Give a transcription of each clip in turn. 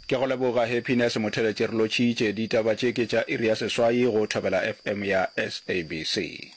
Ke go leboga Happiness Motheletše re lotšhitše ditaba tše ke tša iri ya seswai go Thobela FM ya SABC.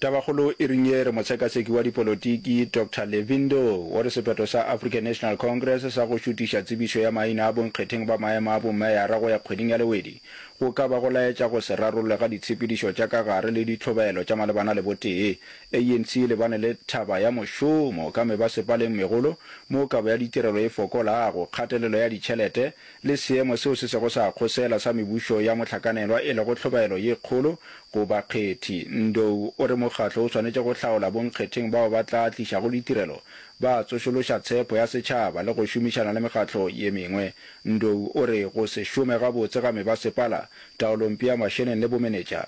Tabakgolo e reng ye re motshekatsheki wa dipolotiki Doctor Levindo o re sephetho sa African National Congress sa go šutiša tsebišo ya maina a bonkgetheng ba maemo a bomeyara go ya kgweding ya Lewedi go ka ba go laetša go se rarollwe ga ditshepedišo tša ka gare le ditlhobaelo tša malebana le botee. ANC e lebane le thaba ya mošomo ka mebasepaleng megolo moo kabo ya ditirelo e fokolago, kgatelelo ya ditšhelete, le seemo seo se sego sa kgosela sa mebušo ya mohlakanelwa e lego tlhobaelo ye kgolo go bakgethi. Ndou o re mokgatlo o swanetše go hlaola bonkgetheng bao ba tla tlišago ditirelo, ba tsošološa tshepo ya setšhaba le go šomišana le mekgatlo ye mengwe. Ndou o re go se šome gabotse ga mebasepala, taolompe ya mašeneng le bomenetša,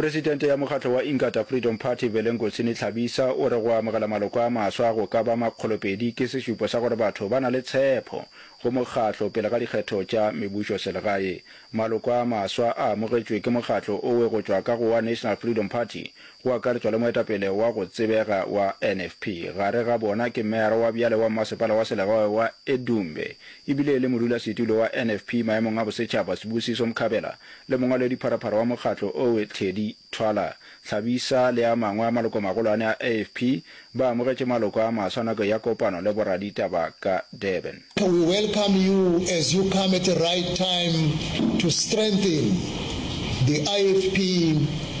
Presidente ya mokgatlo wa Inkatha Freedom Party, Velengosini Tlhabisa, o re go amogela maloko a maswa go ka ba makgolopedi ke sešupo sa gore batho ba na le tshepho go mokgatlo pele ga dikgetho tša mebušoselegae. Maloko a maswa a amogetšwe ke mokgatlo owe go tšwa ka go wa National Freedom Party, go akaretšwa le moetapele wa go tsebega wa NFP. Gare ga bona ke meyara wa bjale wa mmasepala wa selegae wa Edumbe e bile e le modulasetulo wa NFP maemong a bosetšhaba, Sibusiso Mkhabela, le mongwaledipharaphara wa mokgatlo owe Teddy Twala. Thabisa le a mangwe a malokomagolwane a AFP ba amogetše maloko a maswa nako ya kopano le boraditaba ka Durban. We welcome you as you come at the right time to strengthen the IFP.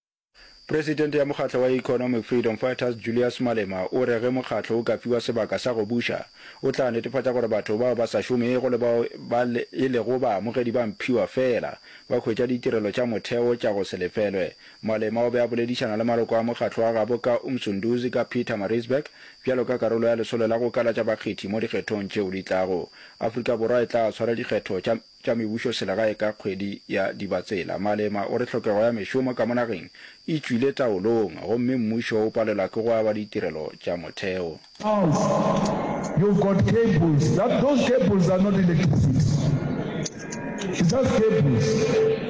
Presidente ya mokgatlo wa Economic Freedom Fighters Julius Malema o re ge mokgatlo o ka fiwa sebaka sa go buša, o tla netefatša gore batho bao ba sa šomego le bao ba e lego baamogedi ba mphiwa feela ba hwetša ditirelo tša motheo tša go se lefelwe. Malema o be a boledišana le maloko a mokgatlo wa gabo ka Umsunduzi ka Pietermaritzburg bjalo ka karolo ya lesolo la go kalatša bakgethi mo dikgethong tšeo di tlago. Afrika Borwa e tla swara dikgetho tša tša mebušo selegae ka kgwedi ya Dibatsela. Malema o re tlhokego ya mešomo ka mo nageng e tšwile taolong gomme mmušo o palelwa ke go aba ditirelo tša motheo. Charles, you've got cables that those cables are not electricity it's just cables.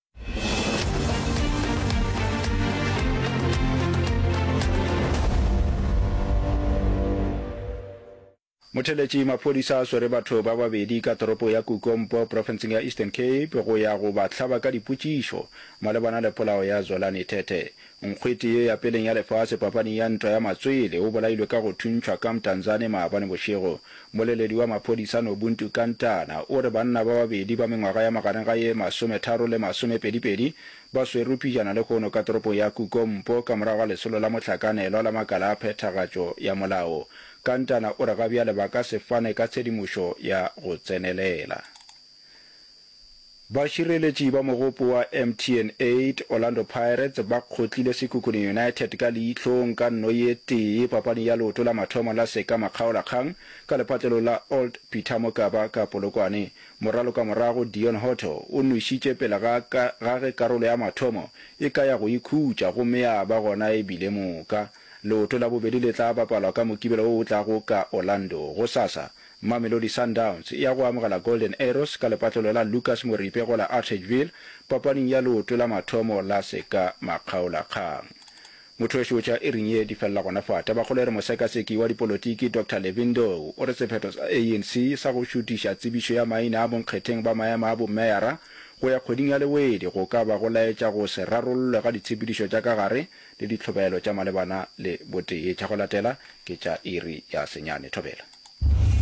motheletši maphodisa a swere batho ba babedi ka toropo ya kukompo profenseng ya eastern cape go ya go ba hlaba ka dipotšišo malebana le polao ya zwelane thethe Nkgwete ye ya peleng ya lefase papaning ya ntwa ya matswele o bolailwe ka go thuntšhwa ka Mtanzane maabane bošego. Moleledi wa maphodisa Nobuntu Kantana o re banna ba babedi ba mengwaga ya magareng ga ye masometharo le masomepedipedi ba swerwe pijana lehono ka toropong ya Kukompo ka morago ga lesolo la mohlakanelwa la makala a phethagatšo ya molao. Kantana o re gabjale ba ka se fane ka tshedimošo ya go tsenelela. Bašireletši ba mogopo wa MTN 8, Orlando Pirates, ba kgotlile Sekhukhune United ka leihlong ka nno ye tee papaneng ya leoto la mathomo la seka makgaolakgang ka lephatlelo la Old Peter Mokaba ka Polokwane. Moralo ka morago Deon Hotto o nwešitše pele ga ka ga ge karolo ya mathomo e ka ya go ikhutša gomme ya ba gona e bile moka. Leoto la bobedi le tla bapalwa ka Mokibelo o o tlago ka Orlando, gosasa, Mamelodi Sundowns ya go amogela Golden Arrows ka lepatlelo la Lucas Moripe go la Atteridgeville papaning ya leoto la mathomo la seka makgaolakgang. Mothoešoetša e reng ye di felela gona fa Tabakgolo e re mosekaseki wa dipolotiki Doctor Levin Ndou o re sephetho sa ANC sa go šutiša tsebišo ya maina a bonkgetheng ba maema a bomeyara go ya kgweding ya Lewedi go ka ba go laetša go se rarollwe ga ditshepedišo tša ka gare le ditlhobaelo tša malebana le botee. Tša go latela ke tša iri ya senyane. Thobela.